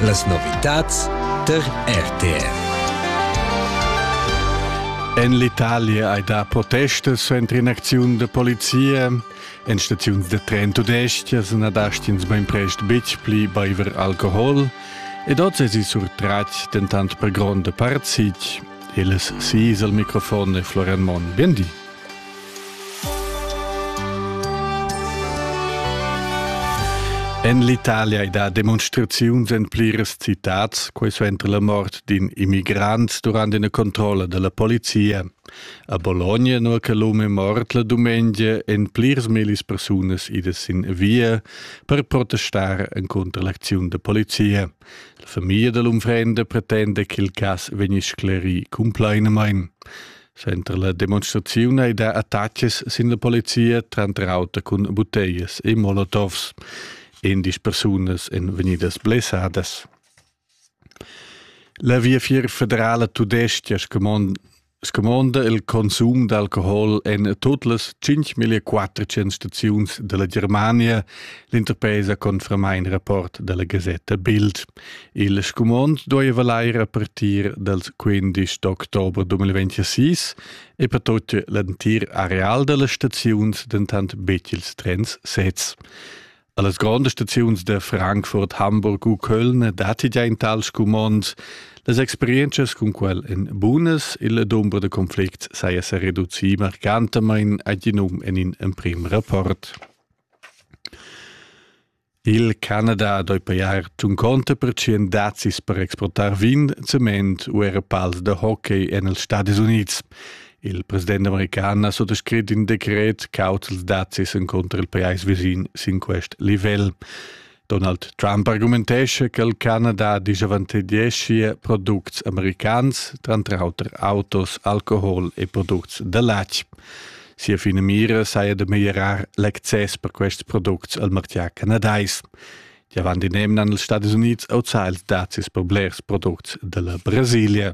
Las novitads tar RTR. En l'Italia hai dà protestas suenter in'acziun da polizia. En staziuns da tren tudestgas na dast'ins bainprest betg pli baiver alcohol. Ed oz èsi surtratg dentant per gronda part sitg. Il sis al microfon è Florian Monn. Bien di. En l'Italia ei dat demonstraziuns en pliras citads, quei suenter la mort d'in immigrant durant ina controlla dalla polizia. A Bologna, nua che l'um è mort la dumengia, en plirs millis persunas idas sin via per protestar contro l'acziun da polizia. La famiglia dell'unfrenda pretende che il cass vegni sclerì cumplainamain. Center la demonstraziun ei da attacches sin la polizia tranter auter cun buteias e molotovs. Endisch persunas en vegnidas blessadas. La Viafier federala tudesca scumonda il consum d'alcohol en tot las 5.400 staziuns della Germania, l'interpresa conferma in rapport della Gazetta Bild. Il scumond dueva lair a partir dals 15 d'october 2026 e per tut l'entir areal da las staziuns dentant betg ils trens sezs. A las grondas staziuns da Frankfurt, Hamburg u Köln datti già in tal scumond. Las experientschas cun quel èn bunas. Il dumber da conflicts saja sa reducì marcantamain ad in um en in emprim rapport. Il Canada ha doi pajar tun conta per tschien dazis per exportar vin, cement u era pals da hockey en els Stadis Unids. Il president american ha sottoscrit in decret cauts ils dazis en contra il pajais visin sin quest livel. Donald Trump argumentesce che il Canada disavantageschia products americans, tranter auter autos, alcohol e products da latg. Sia finamira saja da meglierar l'access per quests products al martgà canadais. Die waren die nehmen an den Estados Unidos outside dacis per blers products della Brasilia.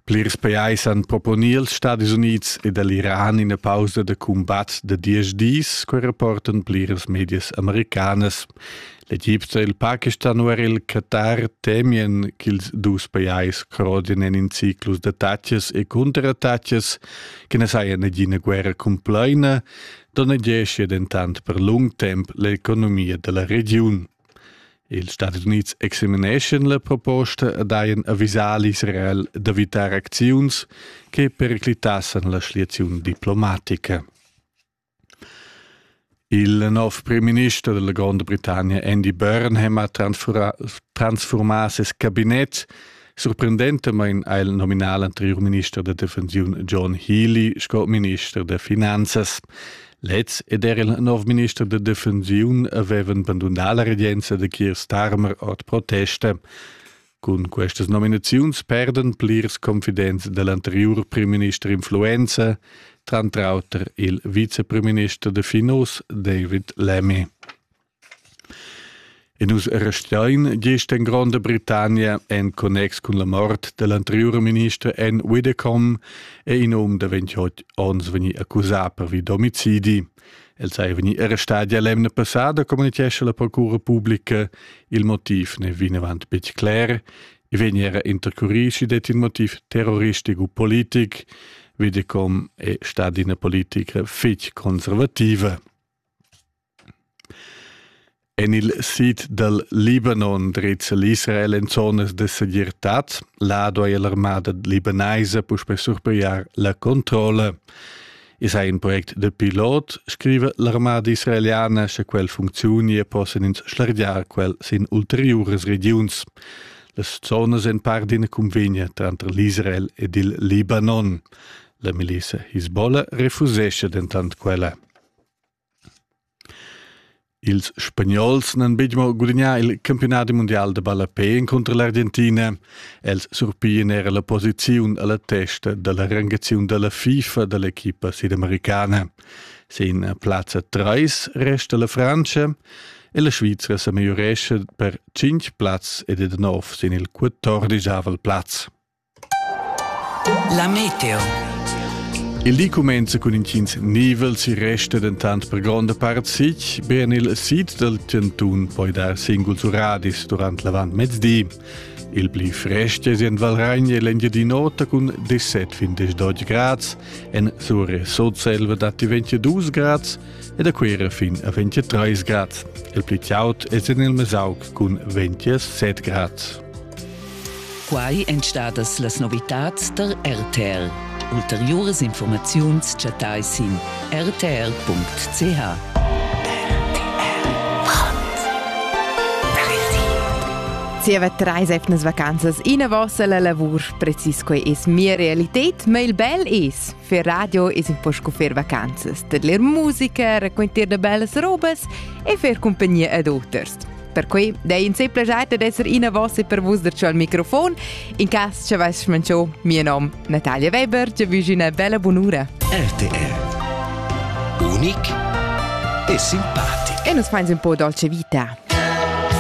Plirs pajais han proponì als Stadis Unids ed all'Iran ina pausa da cumbat da diesch dis, quai rapportan pliras medias americanas. L'Egipto e il Pakistan u er il Katar temien ch'ils dus pajais crodien en in ciclus da tatschas e cunterattatschas che na saja nagina guerra cumplaina, donnegessia dentant per lung temp l'economia da la regiun. Ils Stati Unids examineschan la proposta e daien avisar l'Israel d'evitar acziuns che periclitassan la schliaziun diplomatica. Il nov primminister della Gronda Britannia Andy Burnham ha transfurmà ses cabinet. Surprendentamain ha el nominà l'anteriur minister da defensiun John Healy sco minister da finanzas. Lez ed er il nov minister da defensiun avevan bandunà la regenza da Keir Starmer ord protesta. Cun questas nominaziuns perdan plirs confidents dell'anteriur primminister influenza, tranter auter il viceprimminister de Finos David Lemmy. E nus restein gist en Gronda Britannia en connex cun la mort dell'anteriur minister Ann Widdecombe e in um davent onns vegni accusà per vi d'omicidi. El sei vegni arrestadi l'emna passada, communitgescha la procura publica. Il motiv ne vinavant betg cler. I vegni era intercurisi det il motiv terroristico u politic. Videcom è stata una politica fitch conservativa. En il sid dal Libanon drizza l'Israel en zonas de segirtad. Là duai l'armada libanaisa puspè surpigliar la controlla. I sei un project de pilot, scrive l'armada israeliana, sche quel funczioni e possen ins schlargiar quel sin ulteriores regions. Las zonas en par d'ina convegna tranter l'Israel ed il Libanon. La milisa Hezbollah refusesce dentant quella. Ils Spagnols n'han betg mo gudagnà il campiunadi mundial da ballapè encunter l'Argentina, els surpian era la posiziun a la testa da la rangaziun da la FIFA da l'equipa sudamericana. Sin plazza 3 resta la Frantscha e la Svizra sa migliurescha per 5 plazs ed è da nov sin il quattordisavel plaz. La meteo. Il di cumenza cun intgins nivels, il resta dentant per gronda part sic. Be en il sid dal chantun poi dar singuls uradis durant l'avantmezdi. Il pli frest è en Valragna l'Engiadin'Ota cun 17-20 grads, en Sure Sotselva datti 22 grads ed a Cuera fin a 23 grads. Il pli chaud è en il Mesauc cun 27 grads. Quai èn stadas las novitads tar RTL. Ulteriuras informaziuns chattai sin rtl.ch. Zieva treis etnas vacanzas inavos alla lavur, precis quei es mia realität, ma il bel es. Fer radio es un po sco fer vacanzas, tadler musica, raquentar da bellas robas e fer compagnia ad oters. Perquei dei in simpel geiter d'esser ina vossa per vus da al microfon. In cas che vais manchau, mio nom Natalia Weber, ti wünschi una bella bunura. RTR. Unic e simpatico. E nos fans un po' dolce vita.